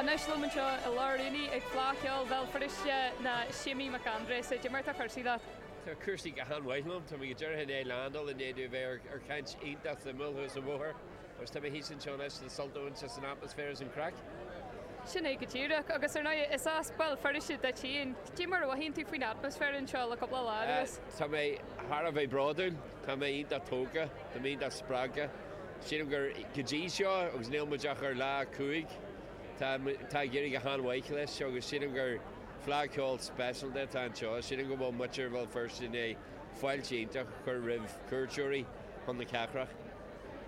Anois liom anseo i lár an aonaigh ag Fleadh Cheoil Bhéal Feirste ná Séimí Mac Aindreasa. Cad é mar atá cúrsaí leat? Tá cúrsaí go han-mhaith liom. Tá mé go díreach i ndiaidh landáil i ndiaidh dom bheith ar chaint iontach suimiúil thuas an bhóthair agus tá mé thíos anseo anois le sult a bhaint as an atmaisféar is an craic. Sin é go díreach agus ar ndóigh is as Béal Feirste duit féin. Cad é mar a mhothaíonn tú faoin atmaisféar anseo le cúpla lá anuas? Tá mé thar a bheith bródúil. Tá mé iontach tógtha. Tá mé iontach spreagtha. Sílim gur go dtí seo, agus níl muid ach ar lá a cúig, tá muid, tá ag éirí go han-mhaith leis agus sílim gur Fleadh Ceoil speisialta atá anseo. Sílim go bhfuil muintir Bhéal Feirste i ndiaidh fáilte iontach a chur roimh chuairteoirí chun na cathrach.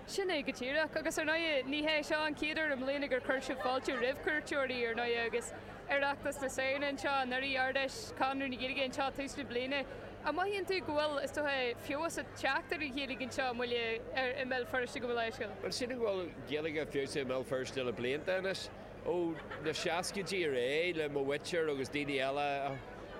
Sin é go díreach. Agus ar ndóigh, ní hé seo an chéad uair i mbliana gur chuir sibh fáilte roimh chuairteoirí, ar ndóigh, agus Oireachtas na Samhna anseo anuraidh, Ard-Fheis Chonradh na Gaeilge anseo tús na bliana, An mothaíonn tú go bhfuil, is dócha, feabhas ag teacht ar an Ghaeilge anseo i mBaile Átha, i mBéal Feirste gabh mo leithscéal? Bhuel, sílim go bhfuil Gaeilge feabhsaithe i mBéal Feirste le blianta anois, ó na seascaidí ar aghaidh, le mo mhuintir agus daoine eile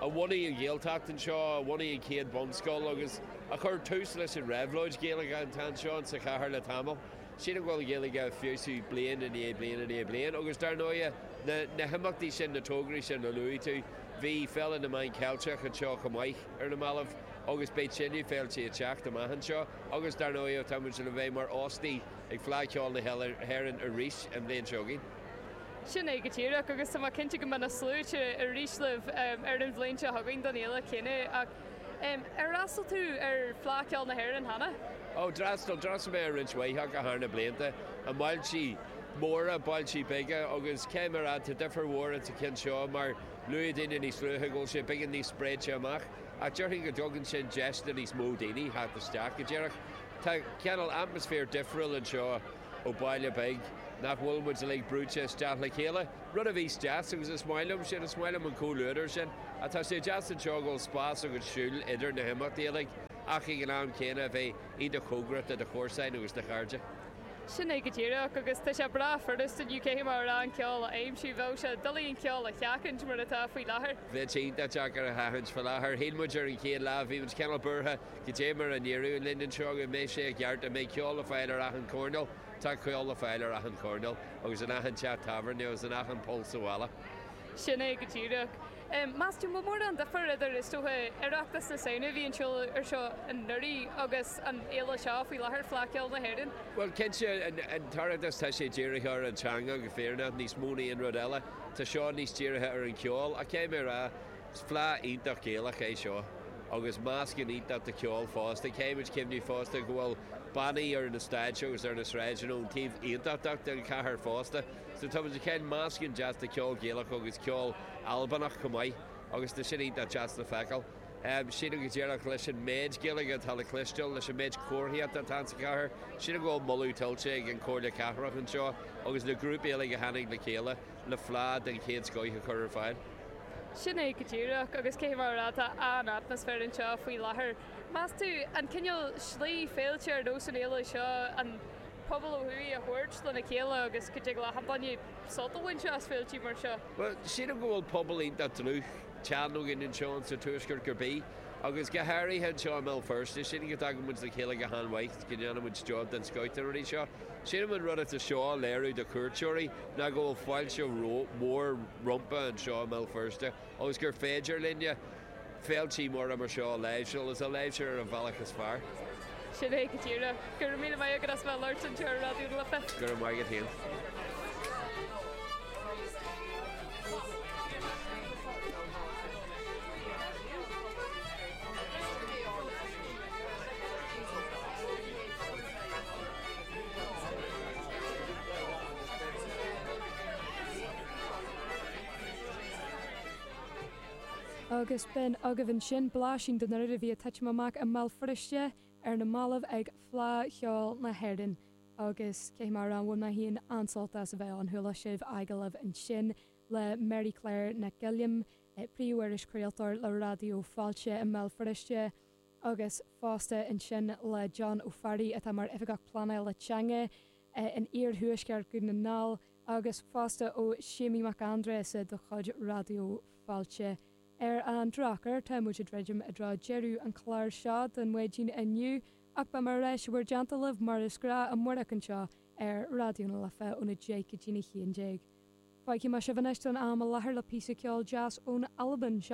a bhunaigh an Ghaeltacht anseo, a bhunaigh an chéad bhunscoil agus a chuir tús leis an reabhlóid Ghaeilge atá anseo insa chathair le tamall. Sílim go bhfuil an Ghaeilge ag feabhsú bliain i ndiaidh bliain i ndiaidh bliain agus dar ndóighe, na himeachtaí sin, na tograí sin a luaigh tú, Bhí Féile na Meán Ceilteach anseo chomh maith ar na mallaibh agus beidh tuilleadh féiltí ag teacht amach anseo agus dar ndóigh tá muid le bheith mar óstaigh ag Fleadh Cheoil na hÉireann arís an bhliain seo chugainn. Sin é go díreach agus tá mé cinnte go mbeidh na sluaite arís libh ar an bhliain seo chugainn don fhéile chéanna. Ar fhreastal tú ar Fleadh Ceoil na hÉireann cheana? Ó, d'fhreastal. D'fhreastal mé ar roinnt mhaith acu thar na blianta, i mbailte móra, bailte beaga agus caithfidh mé a rá, tá difir mhór ins an cheann seo mar luaigh daoine níos luaithe go bhfuil sé beagán níos spréite amach ach déarfainn go dtugann sin deis do níos mó daoine theacht isteach go díreach. Tá cineál atmaisféar difriúil anseo. ó baile beag, nach bhfuil muid uilig brúite isteach le chéile, rud a bhíos deas agus is maith liom sin, is maith liom an comhluadar sin, ach tá sé deas anseo go bhfuil spás agat siúl idir na himeachtaí uilig ach ag an am céanna a bheith iontach cóngarach do do chomharsain agus do chairde. Sin é go díreach, agus tá sé breá furast inniu, caithfidh mé a rá, an ceol a aimsiú, bheadh sé doiligh an ceol a sheachaint mar atá faoi láthair. Bheadh sé iontach deacair a sheachaint faoi láthair. Shíl muid ar an chéad lá, bhí muid cineál buartha, Cad é mar a n-éireodh linn anseo go mbeidh sé i gceart, an mbeidh ceol le fáil ar achan choirnéal, tá ceol le fáil ar achan choirnéal agus in achan teach tábhairne agus in achan poll sa bhaile. Sin é go díreach. Meas tú an mór an difear idir, is dócha, Oireachtas na Samhna a bhí anseo ar seo anuraidh agus an fhéile seo faoi láthair Fleadh Cheoil na hÉireann? Bhuel, cinnte, an tOireachtas tá sé dírithe ar an teanga go fírinneach, níos mó ná aon rud eile. Tá seo níos dírithe ar an gceol. Ach caithfidh mé a rá, Is fleadh iontach Gaelach é seo agus meascán iontach de cheol fosta. Caithfimid cuimhneamh fosta go bhfuil bannaí ar na stáitse agus ar na sráideanna ón taobh aontachtach den chathair fosta. So tá muid ag fáil meascán deas de cheol Gaelach agus ceol Albanach chomh maith agus tá sin iontach deas le feiceáil. Sílim go díreach leis an méid Gaeilge atá le cloisteáil, leis an méid comharthaíochta atá insa chathair, sílim go bhfuil moladh tuillte ag an Chomhairle Cathrach anseo agus na grúpaí uilig a tháinig le chéile, le fleá den chéad scoith a chur ar fáil. Sin é go díreach, agus cé mar atá an atmaisféar anseo faoi láthair, meas tú? An cineál slí, féilte ar nós an fhéile seo, an pobal ó thuaidh a thabhairt lena chéile agus go dtig leat achan duine sult a bhaint as féiltí mar seo? Bhuel, sílim go bhfuil pobal iontach dlúth, teann againn anseo sa tuaisceart ar scor ar bith, agus go háirithe anseo i mBéal Feirste, sílim go dtagann muid le chéile go han-mhaith. go ndéanann muid job den scoth de rudaí mar seo. Sílim an rud atá seo a léiriú do chuairteoirí ná go bhfuil fáilte mhór rompa anseo i mBéal Feirste agus gur féidir linne féiltí móra mar seo a láimhseáil agus a láimhseáil ar an bhealach is fearr. Sin é go díreach. Go raibh míle maith agat as bheith ag labhairt anseo ar Raidió na Life. Go raibh maith agat féin. Agus b'in agaibh ansin blaisín den rud a bhí ag titim amach i mBéal Feirste ar na mallaibh ag Fleadh Cheoil na hÉireann. Agus cé mar a bhain mé féin an-sult as a bheith ann, chuala sibh agallamh ansin le Máire Clár Nic Giolla, príomh-iriseoir craoltóir le Raidió Fáilte i mBéal Feirste, agus fosta ansin le John Ó Fearraigh atá mar Oifigeach Pleanála Teanga in iarthuaisceart Dhún na nGall agus fosta ó Séimí Mac Aindreasa de chuid Raidió Fáilte. Ar an drochuair tá muid ag druidim i dtreo deireadh an chláir seo don Maidin inniu ach beidh muid ar ais ag labhairt libh mar is gnáth amárach anseo ar Raidió na Life óna deich go dtína haon déag. Fágfaidh mé sibh anois don am i láthair le píosa ceol deas ón Albain.